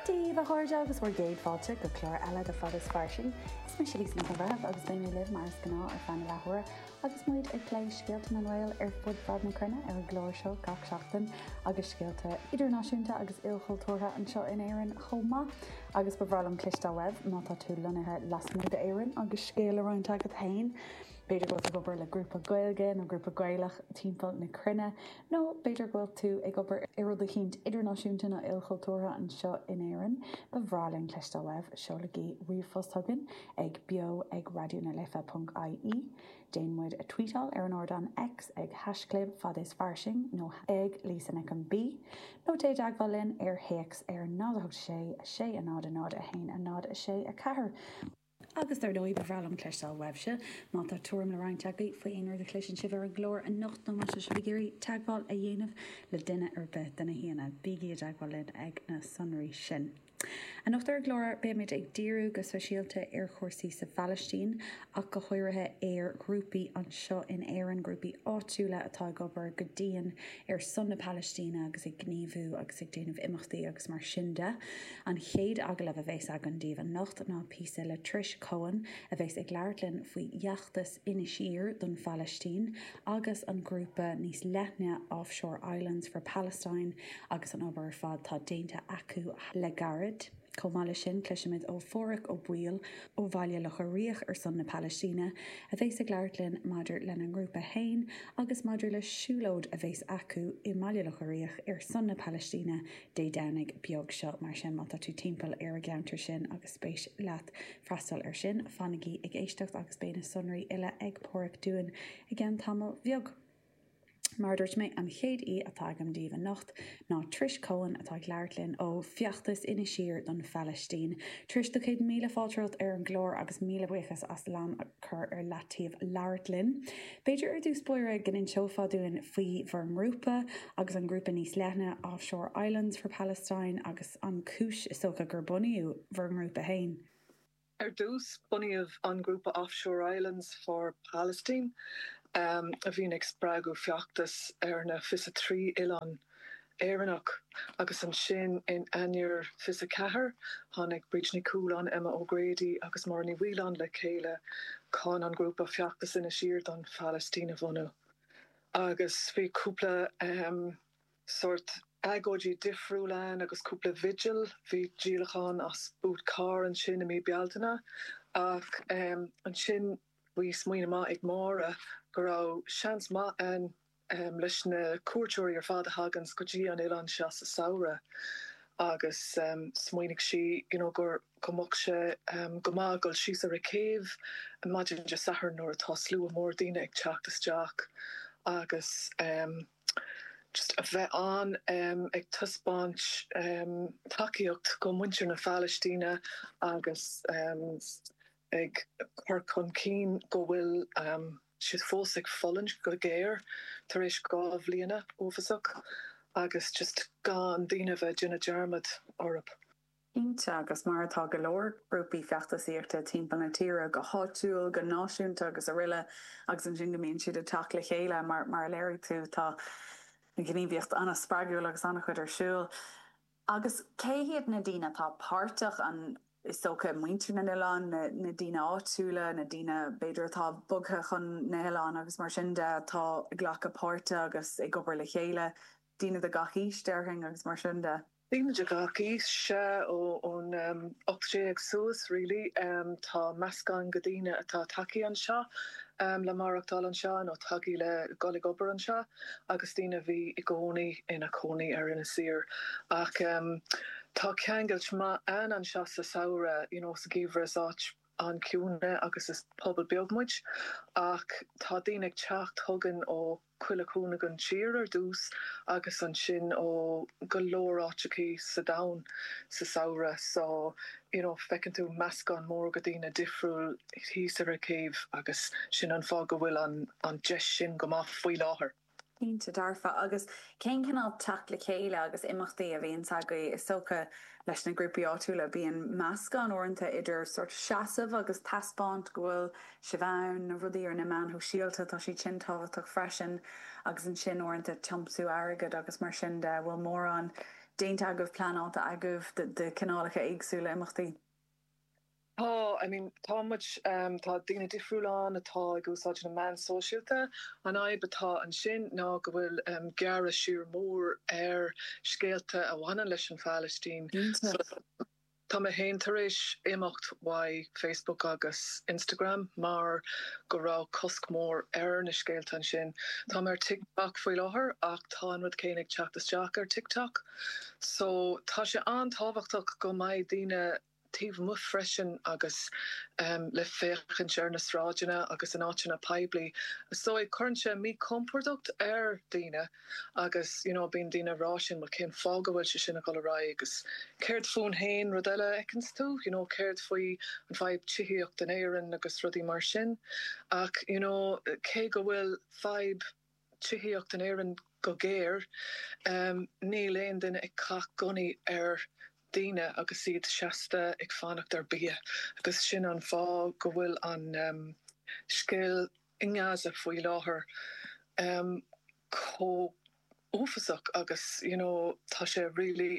Daoibh, a chairde, agus bhur gcéad fáilte go clár eile de Fad is Fairsing. Is mise Lisa Nic an Bhreithimh agus beidh mé libh mar is gnáth ar feadh na leathuaire agus muid ag plé scéalta na nGael ar fud fad na cruinne ar an gclár seo gach seachtain agus scéalta idirnáisiúnta agus ilchultúrtha anseo in Éirinn chomh maith. Agus ba bhreá liom cloisteáil uaibh má tá tú lonnaithe lasmuigh d'Éirinn agus scéal le roinnt agat féin. B'fhéidir go bhfuil tú ag obair le grúpa Gaeilge nó grúpa Gaelach timpeall na cruinne, nó b'fhéidir go bhfuil tú ag obair ar rud eicínt idirnáisiúnta nó ilchultúrtha anseo in Éirinn. Ba bhreá linn cloisteáil uaibh, seolaigí ríomhphost chugainn ag beo ag raidió na life ponc ie, déan muid a tvuíteáil ar an ardán X ag hashchlib fad is fairsing nó ag Lisa Nic an B, nó téigh i dteagmháil linn ar théacs ar 0 8 6 6 0 0 1 0 6 4. Agus dar ndóigh, ba bhreá liom cloisteáil uaibhse, má tá tuairim le roinnt agaibh faoi aon rud a chloiseann sibh ar an gclár anocht nó má tá sibh ag iarraidh teagmháil a dhéanamh le duine ar bith de na haíonna, bígí i dteagmháil linn ag na sonraí sin. Anocht ar an gclár, beimid ag díriú go speisialta ar chúrsaí sa Phalaistín, ach go háirithe ar ghrúpaí anseo in Éirinn, grúpaí áitiúla atá ag obair go dian ar son na Palaistíne agus ag gníomhú agus ag déanamh imeachtaí agus mar sin de. An chéad agallamh a bheas againn daoibh anocht ná píosa le Trish Coen a bheas ag labhairt linn faoi fheachtas Inis Oírr don Phalaistín agus an grúpa níos leithne Offshore Islands for Palestine agus an obair ar fad tá déanta acu le gairid. Chomh maith leis sin, cloisfimid ó Pháraic Ó Baoill ó Bhaile Locha Riach ar son na Palaistíne, a bheas ag labhairt linn maidir lena ngrúpa fhéin agus maidir le siúlóid a bheas acu i mBaile Locha Riach ar son na Palaistíne Dé Domhnaigh beag seo. Mar sin, má tá tú timpeall ar a gceantar sin agus spéis leat freastal ar sin, fanaigí ag éisteacht agus beidh na sonraí uile ag Páraic dúinn i gceann tamaill bheag! Mar a dúirt mé, an chéad aoi atá agam daoibh anocht ná Trish Coen atá ag labhairt linn ó Feachtas Inis Oírr don Phalaistín. Trish, do chéad míle fáilte romhat ar an gclár agus míle buíochas as an am a chur ar leataobh labhairt linn. B'fhéidir ar dtús báire go n-inseofá dúinn faoi bhur ngrúpa agus an grúpa níos leithne Offshore Islands for Palestine agus an chúis, is dócha, gur bunaíodh bhur ngrúpa fhéin. Ar dtús, bunaíodh an grúpa Offshore Islands for Palestine, a bhíonn ag spreagadh feachtas ar na 23 oileán Éireannach, agus ansin, in Eanáir 24, tháinig Bríd Ní Chualáin, Emma O'Grady agus Máire Ní Mhaoileáin le chéile chun an grúpa Feachtas Inis Oírr don Phalaistín a bhunú, agus bhí cúpla. sórt agóidí difriúil ann agus cúpla vigil, bhí díolachán as boot car ansin i mí Bealtaine ach ansin bhí smaoineamh maith ag Máire go raibh seans maith ann leis na cuairteoirí ar fad a thaganns go dtí an oileán seo sa samhradh agus smaoinigh sí you know gur go mbeadh sé go maith dul síos ar an gcéibh maidin Dé Sathairn nuair atá slua mór daoine ag teacht isteach agus. just a bheith ann ag taispeáint tacaíocht do mhuintir na Palaistíne agus ag cur chun cinn go bhfuil siad fós ag fulaingt go géar tar éis dhá bhliain uafásach agus just gan daoine a bheith ag déanamh dearmad orthu. Cinnte, agus mar atá go leor grúpaí feachtasaíochta timpeall na tíre, go háitiúil, go náisiúnta agus araile, agus ansin go mbíonn siad ag teacht le chéile, mar a léirigh tú, tá gníomhaíocht an-spreagúil agus an-chuid ar siúl. Agus cé hiad na daoine atá páirteach? An, is dócha, muintir na n-oileán, na daoine áitiúla, na daoine b'fhéidir atá bogtha chun na n-oileán agus mar sin de atá ag glacadh páirte agus ag obair le chéile, daoine de gach aois, déarfainn, agus mar sin de. Daoine de gach aois, sea, ón ocht déag suas, really. Tá meascán de dhaoine atá tagtha anseo le maireachtáil anseo nó tagtha le dhul ag obair anseo agus daoine a bhí i gcónaí ina cónaí ar Inis Oírr. Ach tá ceangal maith ann anseo sa samhradh, you know, sa gheimhreadh is áit. an-chiúin agus is pobal beag muid ach tá daoine ag teacht chugainn ó chuile cúinne den tír ar dtús agus ansin ó go leor áiteachaí sa domhan sa samhradh so you know feiceann tú meascán mór de dhaoine difriúil thíos ar an gcéibh agus sin an fáth go bhfuil an deis sin go maith faoi láthair. Cinnte dearfa. Agus cén cineál teacht le chéile agus imeachtaí a bhíonns agaibh? Is dócha, leis na grúpaí áitiúla, bíonn meascán uaireanta idir sórt seasamh agus taispeáint go bhfuil sibh ann, na rudaí ar na meáin shóisialta, tá siad sin tábhachtach freisin, agus ansin uaireanta tiomsú airgid agus mar sin de. An bhfuil mórán déanta agaibh, pleanáilte agaibh de chineálacha éagsúla imeachtaí? Tá, I mean, tá muid, tá daoine difriúla ann atá ag úsáid na meán sóisialta. An fhadhb atá ansin ná go bhfuil gearradh siar mór ar scéalta a bhaineann leis an bPalaistín. Tá mé féin tar éis imeacht uaidh Facebook agus Instagram mar go raibh cosc mór ar na scéalta ansin. Tá mé ar TikTok faoi láthair ach tá an rud céanna ag teacht isteach ar TikTok. So, tá sé an-tábhachtach go mbeadh daoine. taobh amuigh freisin agus é le féachaint ar na sráideanna agus in áiteanna poiblí so cuireann sé míchompord ar daoine agus you know bíonn daoine ag rá sin bhuel cén fáth go bhfuil sé sin ag dhul ar aghaidh agus céard fúinn féin nó rud eile a fheiceanns tú you know céard faoi an fhadhb tithíocht in Éirinn agus rudaí mar sin ach you know cé go bhfuil fadhb tithíocht in Éirinn go géar, níl aon duine ag caitheamh gunnaí ar dhaoine agus iad seasta ag fanacht ar bia agus sin an fáth go bhfuil an scéal i nGaza faoi láthair chomh uafasach agus you know tá sé really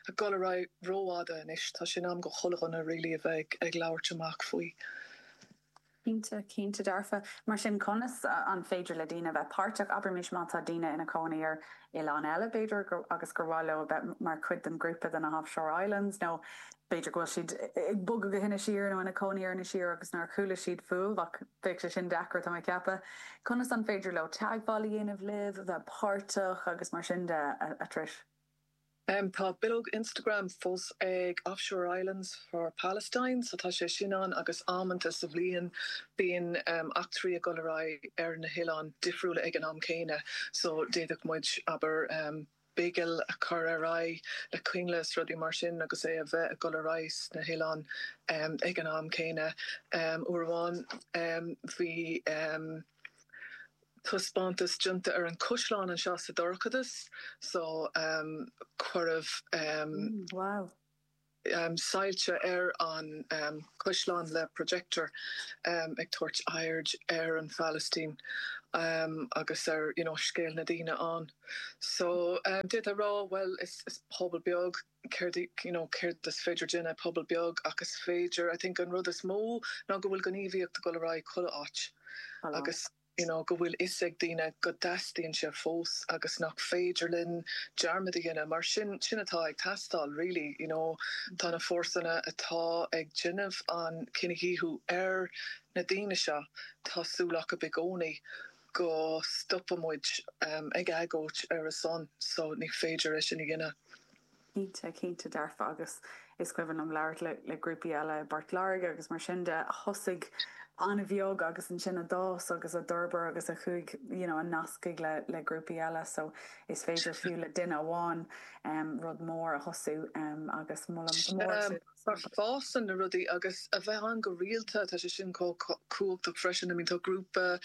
ag dul ar aghaidh ró-fhada anois, tá sé in am do chuile dhuine really a bheith ag labhairt amach faoi. Cinnte, cinnte dearfa. Mar sin, conas an féidir le daoine a bheith páirteach? Abraimis má tá daoine ina gcónaí ar oileán eile, b'fhéidir, agus gur mhaith leo a bheith mar chuid den ghrúpa de na hOffshore Islands, nó b'fhéidir go bhfuil siad ag bogadh go hInis Oírr nó ina gcónaí ar Inis Oírr agus nár chuala siad fúibh, ach bheadh sé sin deacair, tá mé ag ceapadh. Conas an féidir leo teagmháil a dhéanamh libh, a bheith páirteach agus mar sin de, a Trish? Tá bileog Instagram fós ag Offshore Islands for Palestine, so tá sé sin ann agus amanta sa bhliain bíonn eachtraí ag dul ar aghaidh ar na hoileáin difriúla ag an am céanna, so d'fhéadfadh muid, abair, bigil a chur ar aghaidh le coinnle is rudaí mar sin agus é a bheith ag dul ar aghaidh sna hoileáin ag an am céanna. Uair amháin bhí. taispeántas déanta ar an caisleán anseo sa dorchadas so cuireadh soilse ar an chaisleán le projector ag tabhairt aird ar an Phalaistín agus ar you know scéal na ndaoine ann so d'fhéadfá rá bhuel is pobal beag céard, you know, céard is féidir a dhéanamh i bpobal beag ach is féidir, I think an rud is mó ná go bhfuil gníomhaíocht ag dul ar aghaidh chuile áit agus, you know, go bhfuil 'fhios ag daoine go dteastaíonn sé fós agus nach féidir linn dearmad a dhéanamh mar sin, sin atá ag teastáil really, you know, tá na fórsanna atá ag déanamh an cinedhíothú ar na daoine seo, tá súil acub i gcónaí. go stopadh muid ag agóid ar a son so ní féidir linn é sin a dhéanamh. Cinnte, cinnte dearfa agus is cuimhin liom labhairt le grúpaí eile i bPort Láirge agus mar sin de, a thosaigh an-bheag agus ansin a d'fhás agus a d'fhorbair agus a chuaigh you know a nasc le grúpaí eile so is féidir fiú le duine amháin rud mór a thosú agus molaim go mór mar fásann na rudaí agus a bheith ann go rialta, tá sé sin chomh cumhachtach freisin, I mean tá grúpa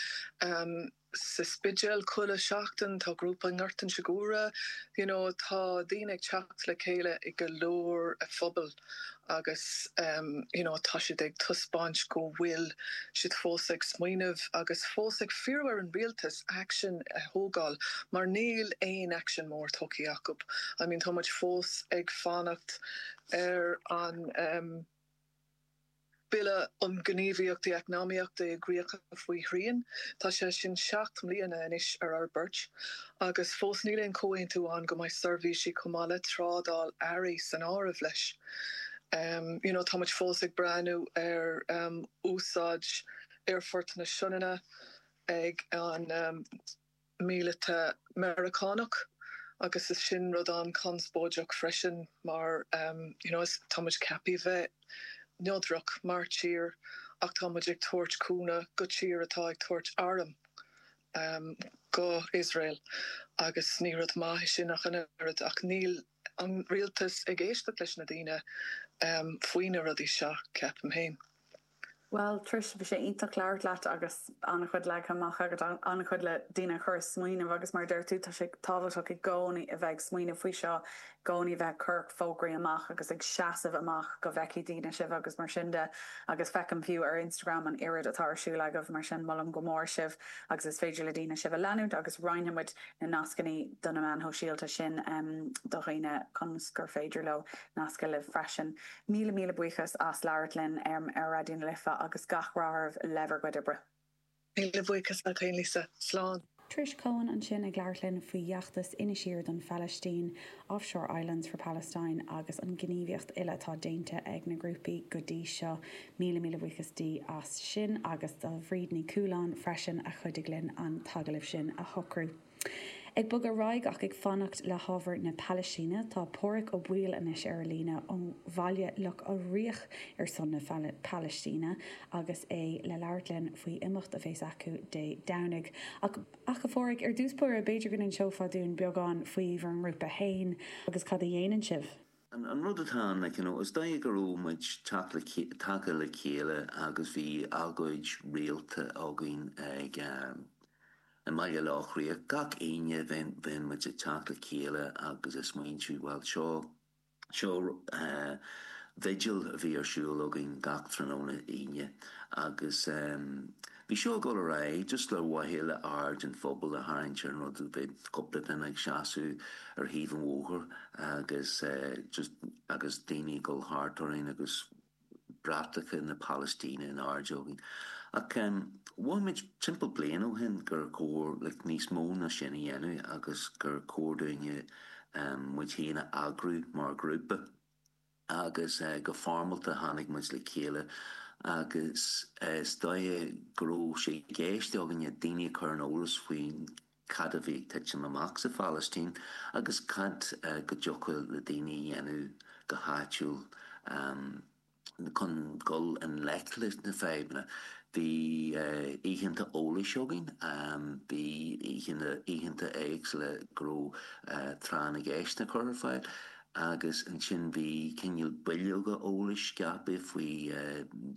sa Spidéal chuile sheachtain, tá grúpa i nGort an tSigiúra, you know tá daoine ag teacht le chéile i go leor phobail agus you know tá siad ag taispeáint go bhfuil siad fós ag smaoineamh agus fós ag fiafraí ar an rialtas action a thógáil mar níl aon action mór tógtha acu, I mean tá muid fós ag fanacht ar an Bille um Ghníomhaíochtaí Eacnamaíochta i gCríocha faoi Shrian. Tá sé sin seacht mbliana anois ar fhorbairt agus fós níl aon chomhaontú ann go mbeidh seirbhísí chomh maith le trádáil earraí san áireamh leis. You know, tá muid fós ag breathnú ar úsáid aerfort na Sionainne ag an. míleata Meiriceánach agus is sin rud an-chonspóideach freisin mar you know is tá muid ceaptha bheith neodrach mar tír ach tá muid ag tabhairt cúnamh go tír atá ag tabhairt arm go Iosrael agus ní rud maith é sin ach an oiread ach níl an rialtas ag éisteacht leis na daoine faoi na rudaí seo, ceapaim féin. Bhuel, Trish, bhí sé iontach labhairt leat agus an-chuid leagtha amach agat, an-chuid le daoine a chur ag smaoineamh agus mar a dúirt tú, tá sé tábhachtach i gcónaí a bheith ag smaoineamh faoi seo, i gcónaí a bheith ag cur fógraí amach agus ag seasamh amach go bhfeicfidh daoine sibh agus mar sin de agus feicim fiú ar Instagram an oiread atá ar siúl agaibh, mar sin molaim go mór sibh agus is féidir le daoine sibh a leanúint agus roinnfidh muid na nascannaí do na meáin shóisialta sin do dhaoine ionas gur féidir leo nascadh libh freisin. Míle míle buíochas as labhairt linn ar Raidió na Life agus gach rath oraibh le bhur gcuid oibre. Míle buíochas agat fhéin Lisa. Slán. Trish Coen ansin ag labhairt linn faoi fheachtas Inis Oírr don Phalaistín Offshore Islands for Palestine agus an ghníomhaíocht uile atá déanta ag na grúpaí go dtí seo, míle míle buíochas di as sin agus do Bhríd Ní Chualáin freisin a chuidigh linn an t-agallamh sin a shocrú. Ag bogadh ar aghaidh ach ag fanacht le hábhar na Palaistíne, tá Pádhraic Ó Baoill anois ar an líne ó Bhaile Locha Riach ar son na Palaistíne agus é le labhairt linn faoi imeacht a bhéas acu Dé Domhnaigh ach Ach, a Phádhraic, ar dtús báire, b'fhéidir go n-inseofá dúinn beagán faoi bhur ngrúpa féin agus cad a dhéanann sibh? An rud atá ann, like, you know, is dóigh go raibh muid tagtha le chéile agus bhí agóid rialta againn ag, i mBaile Locha Riach, gach Aoine bheadh muid ag teacht le chéile agus ag smaointiú, bhuel, seo, Seo vigil a bhí ar siúl againn gach tráthnóna Aoine agus bhí sé ag dul ar aghaidh just le mhaithe le le aird an phobail a tharraingt ar an rud, bheadh cúpla duine ag seasamh ar thaobh an bhóthair agus just agus daoine ag dul thart orainn agus. bratacha na Palaistíne in airde againn. Ach mhothaigh muid timpeall bliain ó shin gur chóir níos mó ná sin a dhéanamh agus gur chóir dúinn muid féin a eagrú mar ghrúpa. Agus go foirmeálta tháinig muid le chéile agus is dóigh go raibh sé i gceist againne daoine a chur ar an eolas faoin cad a bhí ag titim amach sa Phalaistín agus cad go dtiocfadh le daoine a dhéanamh go háitiúil chun dul i ngleic leis na fadhbanna. Bhí oícheanta eolais againn, bhí oícheanta éagsúla go raibh tráth na gceisteanna curtha ar fáil. agus ansin bhí cineál bileoga eolais scaipthe faoi,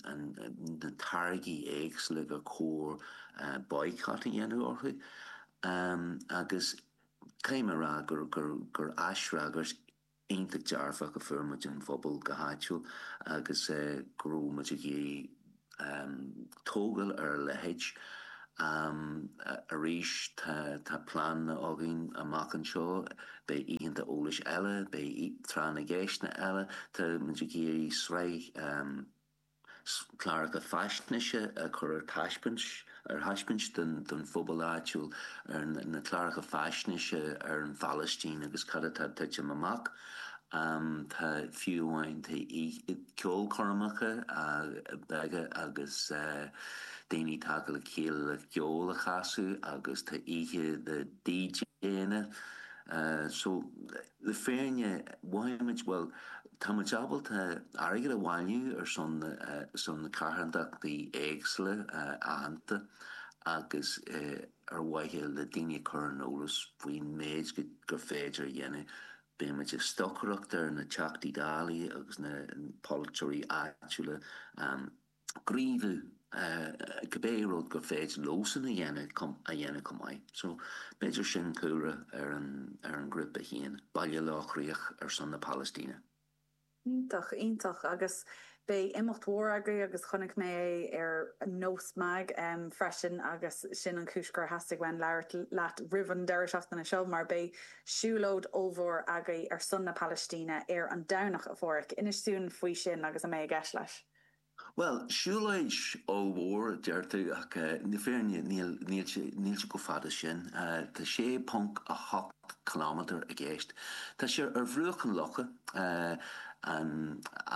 na táirgí éagsúla gur chóir boycott a dhéanamh orthu, agus caithfidh mé a rá gur aisfhreagairt iontach dearfach a fuair muid ón phobal go háitiúil agus go raibh muid ag iarraidh tógáil ar a leithéid. Arís, tá pleananna againn amach anseo, beidh oícheanta eolais eile, beidh tráth na gceisteanna eile, tá muid ag iarraidh sraith cláracha faisnéise a chur ar taispeáint, ar thaispeáint don phobal áitiúil, na cláracha faisnéise ar an Phalaistín agus cad atá ag titim amach. Tá fiú amháin tá ceolchoirmeacha beaga agus daoine ag teacht le chéile le ceol a chasadh agus tá oíche le DJ-anna. Le fírinne, mhothaigh muid, bhuel, tá muid ábalta airgead a bhailiú ar son na carthantachtaí éagsúla aitheanta agus ar mhaithe le daoine a chur ar an eolas faoin méid gur féidir a dhéanamh. Beidh muid ag stocaireacht ar na Teachtaí Dála agus na polaiteoirí áitiúla. gníomhú cibé rud gur féidir leosan a dhéanamh chomh maith so b'fhéidir sin cúlra ar an ghrúpa féin, Baile Locha Riach ar son na Palaistíne. Iontach, iontach agus beidh imeacht mhór agaibh agus chonaic mé é ar Nós Mag freisin agus sin an chúis gur theastaigh uaim labhairt leat roimh an deireadh seachtaine seo mar beidh siúlóid ollmhór agaibh ar son na Palaistíne ar an Domhnach, a Pháraic. Inis dúinn faoi sin agus a mbeidh i gceist leis. Bhuel, siúlóid ollmhór, a deir tú, ach i bhfírinne níl, níl sé, níl sé chomh fada sin. Tá 6.8 kilometer i gceist. Tá sé ar bhruach an locha, an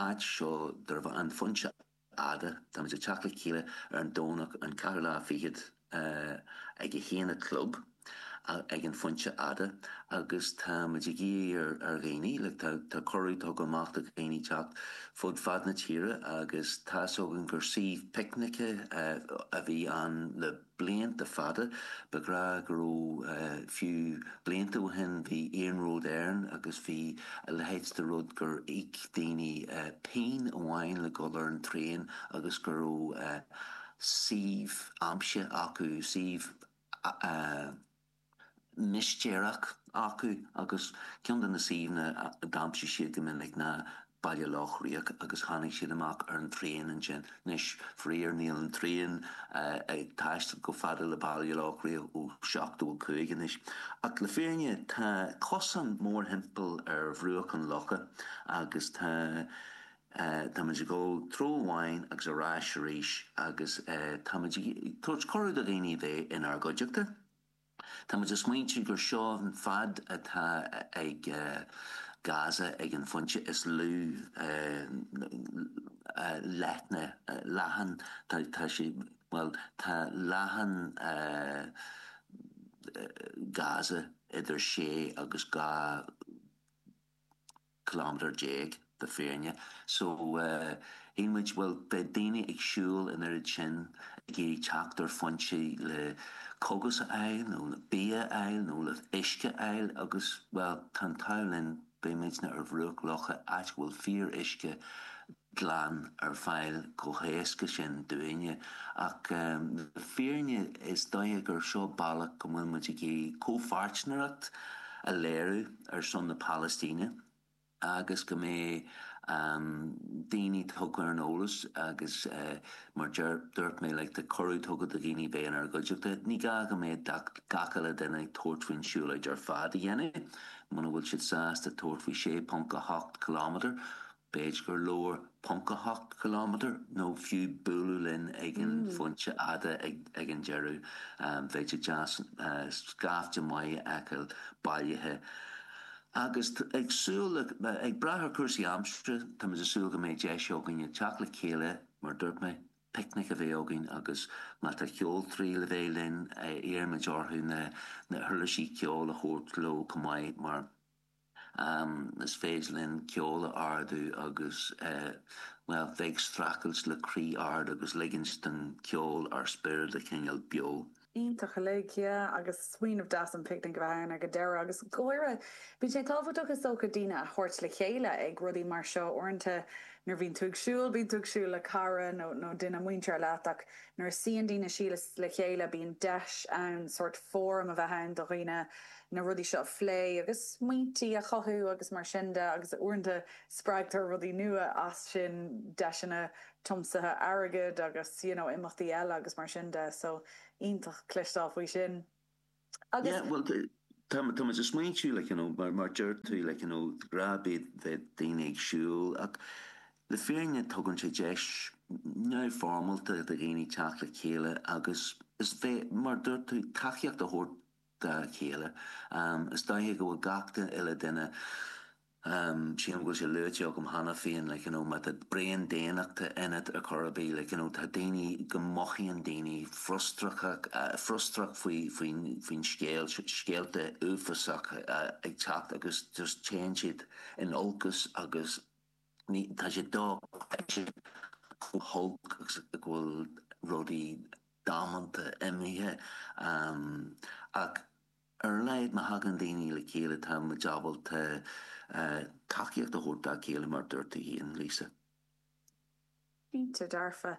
áit seo darb ainm An Phointe Fhada. Táimid ag teacht le chéile ar an Domhnach an ceathrú lá fichead. a ag a haon a chlog ag an phointe fhada agus tá muid ag iarraidh ar dhaoine, tá cuireadh tugtha amach do dhaoine teacht fud fad na tíre agus tá's againn gur suíomh picnice a bhí ann le blianta fada, le rá go raibh, fiú blianta ó shin bhí Iarnród Éireann agus bhí a leithéid de rud gur íoc daoine pingin amháin le dhul ar an traein agus go raibh. suíomh aimsithe acu, suíomh mistéireach acu agus ceann de na suíomhanna a d'aimsigh siad go minic ná Baile Loch Riach agus tháinig siad amach ar an traein ansin. Anois, faraor, níl an traein ag taisteal a fhad le Baile Loch Riach ó 75 anois ach le fírinne tá cosán mórthimpeall ar bhruach an locha agus tá táimid ag dul treo amháin agus ar ais arís agus táimid ag tabhairt cuireadh do dhaoine bheith inár gcuideachta. Táimid ag smaointiú gur seo an fad atá ag, e, Gaza ag an phointe is lú leithne, leathan, tá sé, bhuel, tá leathan Gaza idir sé agus dhá ciliméadar déag le fírinne. So, shíl muid, bhuel, beidh daoine ag siúl an oiread sin ag iarraidh teacht ar fhoinse le cógas a fháil nó le bia a fháil nó le huisce a fháil agus, bhuel, tá an t-ádh linn, beidh muidne ar bhruach locha, áit a bhfuil fíoruisce. glan ar fáil chomh éasca sin dúinne. Ach le fírinne is dóiche gur seo bealach go bhfuil muid ag iarraidh comhpháirtneireacht a léiriú ar son na Palaistíne agus go mbeidh daoine tugtha ar an eolas agus mar dúirt mé like tá cuireadh tugtha do dhaoine bheith inár gcuideachta. Ní gá go mbeidh gach uile duine ag tabhairt faoin siúlóid ar fad a dhéanamh, muna bhfuil siad sásta tabhairt faoi 6.8 kilometre, B'fhéidir gur leor ponc a hocht kilometer nó fiú bualadh linn ag an phointe fhada ag an deireadh, bheadh sé deas scaifte maith a fheiceáil bailithe agus ag súil le, ag brath ar cúrsaí aimsire, táimid ag súil go mbeidh deis againne teacht le chéile, mar dúirt mé, picnic a bheith againn agus má tá ceoltóirí le bheith linn, iarraimid orthu na huirlisí ceoil a thabhairt leo chomh maith mar Más féidir linn ceol a ardú agus, bhuel, bheith ag streachailt le croí ard agus ligint don cheol ár spiorad a choinneáil beo. Iontach uilig, yeah, agus smaoineamh deas an picnic a bheith ann ag an deireadh. Agus go háirithe, bíonn sé tábhachtach is dócha daoine a thabhairt le chéile ag rudaí mar seo. Uaireanta nuair a bhíonn tú ag siúl, bíonn tú ag siúl le cara nó duine muinteartha leat ach nuair a suíonn daoine síos le chéile bíonn deis ann sórt fóram a bheith ann do dhaoine na rudaí seo a phlé agus smaointí a chothú agus mar sin de agus uaireanta spreagtar rudaí nua as sin, deiseanna tiomsaithe airgid agus you know imeachtaí eile agus mar sin de so iontach cluinstin faoi sin agus. Yeah bhuel tá muid ag smaointiú like you know mar mar a dúirt tú like you know go mbeidh daoine ag siúl ach le fírinne tugann sé deis neamhfhoirmeálta do dhaoine teacht le chéile agus is bheith mar a dúirt tú tacaíocht a thabhairt dá chéile. Is dóiche go bhfuil gach uile duine, sílim go bhfuil sé luaite agam cheana féin, like you know, má tá braon daonnachta ionat ar chor ar bith, like you know, tá daoine, go mothaíonn daoine frustrachas, frustrachas faoi, faoin, faoin scéal, scéalta uafásacha ag teacht agus just téann siad in olcas agus ní, tá sé dochreidte chomh holc agus a bhfuil rudaí. damanta imithe. Ach ar a laghad má thagann daoine le chéile tá muid ábalta tacaíocht a thabhairt dá chéile, mar a dúirt tú féin, Lisa. Cinnte dearfa.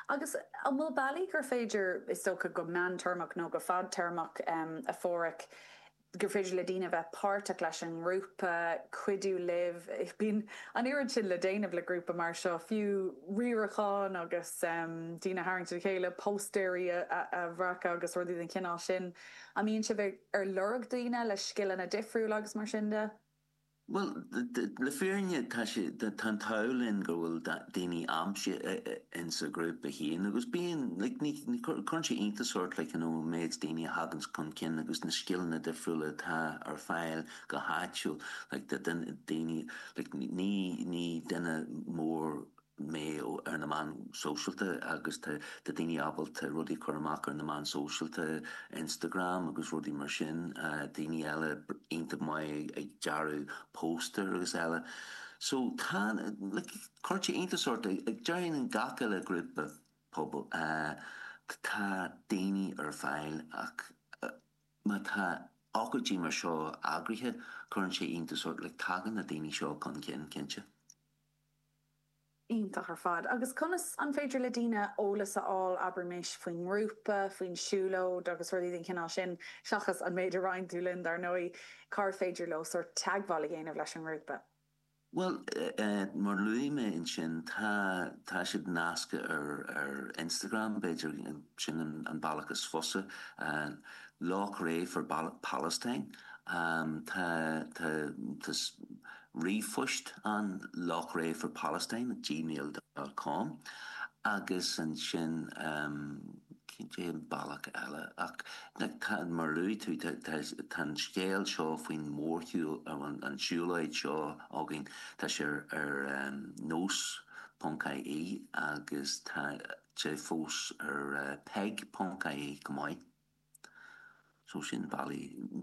Agus an bhfuil bealaí gur féidir, is dócha go meántéarmach nó go fadtéarmach, a Pháraic, gur féidir le daoine a bheith páirteach leis an ngrúpa, cuidiú libh, bíonn an oiread sin le déanamh le grúpa mar seo, fiú riarachán agus daoine a tharraingt le chéile, póstaeirí a bhreacadh agus rudaí den chineál sin. An mbíonn sibh ar lorg daoine le scileanna difriúla agus mar sin de? Bhuel, le fírinne, tá sé, tá an t-ádh linn go bhfuil daoine anseo insa ghrúpa féin agus bíonn, like, ní, cuireann sé iontas ort, like, you know, an méid daoine a thaganns chun cinn agus na scileanna difriúla atá ar fáil go háitiúil, like, tá daoine, like, ní, ní duine mór, mé ar na meáin shóisialta agus tá daoine ábalta rudaí a chur amach ar na meáin shóisialta, Instagram agus rudaí mar sin, daoine eile iontach maith ag dearadh póstaer agus eile. So tá, like, cuirtear iontas ort, déarfainn in gach uile ghrúpa pobail, tá daoine ar fáil ach má tá ócáidí mar seo eagraithe cuireann sé iontas ort, like, tagann na daoine seo chun cinn, cinnte. Iontach ar fad. Agus conas, an féidir le daoine eolas a fháil, abraimis, faoin ngrúpa, faoin siúlóid agus rudaí den chineál sin, seachas an méid a roinn tú linn, dar ndóigh, cár féidir leo sórt teagmháil a dhéanamh leis an ngrúpa? Bhuel, mar a luaigh mé ansin, tá, tá siad nasctha ar, ar Instagram, b'fhéidir, sin an, an bealach is fusa. Loughrea for Palestine, tá, tá, tá, Ríomhphost ann Loughrea for Palestine at gmail dot com agus ansin cén t-aon bealach eile ach tá, mar a luaigh tú, tá an scéal seo faoin mórshiúl, an siúlóid seo againn, tá sé ar Nós ponc IE agus tá sé fós ar PEIG ponc IE chomh maith. So sin na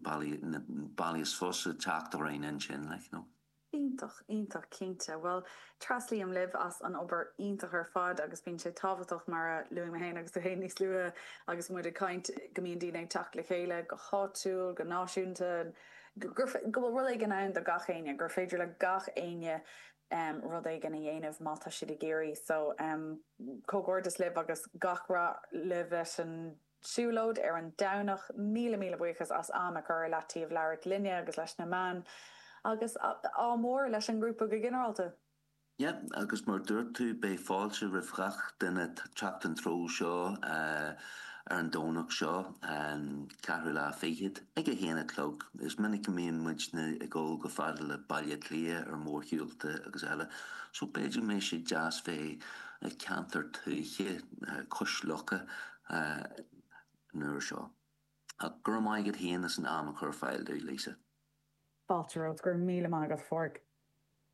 bealaí is fusa teacht orainn ansin, like, you know. Iontach, iontach, cinnte. Bhuel, treaslaím libh as an obair iontach ar fad agus bíonn sé tábhachtach, mar a luaigh mé féin agus tú féin níos luaithe agus muid ag caint, go mbíonn daoine ag teacht le chéile, go háitiúil, go náisiúnta, go bhfuil rud éigin ann do gach éinne, gur féidir le gach éinne rud éigin a dhéanamh má tá siad ag iarraidh. So, comhghairdeas libh agus gach rath libh leis an. siúlóid ar an Domhnach. Míle míle buíochas as am a chur i leataobh labhairt linne agus leis na meáin agus ádh mór leis an ngrúpa go ginearálta! Yeah agus mar dúirt tú beidh fáilte roimh ghach duine teacht an treo seo ar an Domhnach seo an ceathrú lá fichead ag a haon a chlog. Is minic go mbíonn muidne ag dul chomh fada le Baile Átha Cliath ar mórshiúlta agus eile so b'fhéidir go mbeidh sé deas bheith i gceantar tuaithe cois locha. an uair seo. Ach go raibh maith agat féin as an am a chur ar fáil dúinn, Lisa. Fáilte romhat. Go raibh míle maith agat, a Phádraig.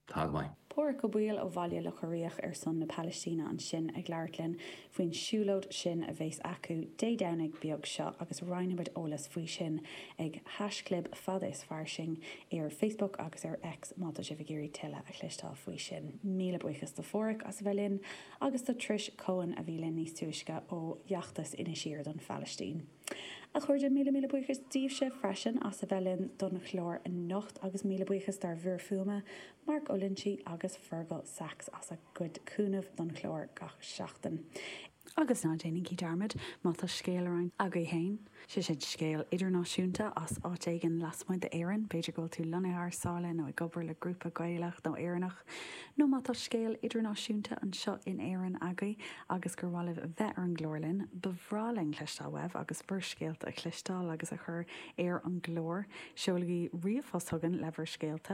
Tá go maith. Pádraig Ó Baoill ó Bhaile Locha Riach ar son na Palaistíne ansin ag labhairt linn faoin siúlóid sin a bheas acu Dé Domhnaigh beag seo agus roinnfimid eolas faoi sin ag haischlib Fada is Fairsing ar Facebook agus ar X má tá sibh ag iarraidh tuilleadh a chloisteáil faoi sin. Míle buíochas do Phádraig as a bheith linn. agus do Trish Coen, a bhí linn níos túisce ó fheachtas Inis Oírr don Phalaistín. A chairde, míle míle buíochas díbhse freisin as a bheith linn don chlár anocht agus míle buíochas dár bhfir fuaime, Mark Ó Loinsigh agus Fergal Sachs as a gcuid cúnaimh don chlár gach seachtain. Agus ná déanaigí dearmad, má tá scéal le roinnt agaibh féin, sé sin, scéal idirnáisiúnta as áit éigin lasmuigh d'Éirinn, b'fhéidir go bhfuil tú lonnaithe thar sáile nó ag obair le grúpa Gaelach nó Éireannach, nó má tá scéal idirnáisiúnta anseo in Éirinn agaibh agus gur mhaith libh bheith ar an gclár linn, ba bhreá linn cloisteáil uaibh agus bhur scéalta a chloisteáil agus a chur ar an gclár. Seolaigí ríomhphost chugainn le bhur scéalta.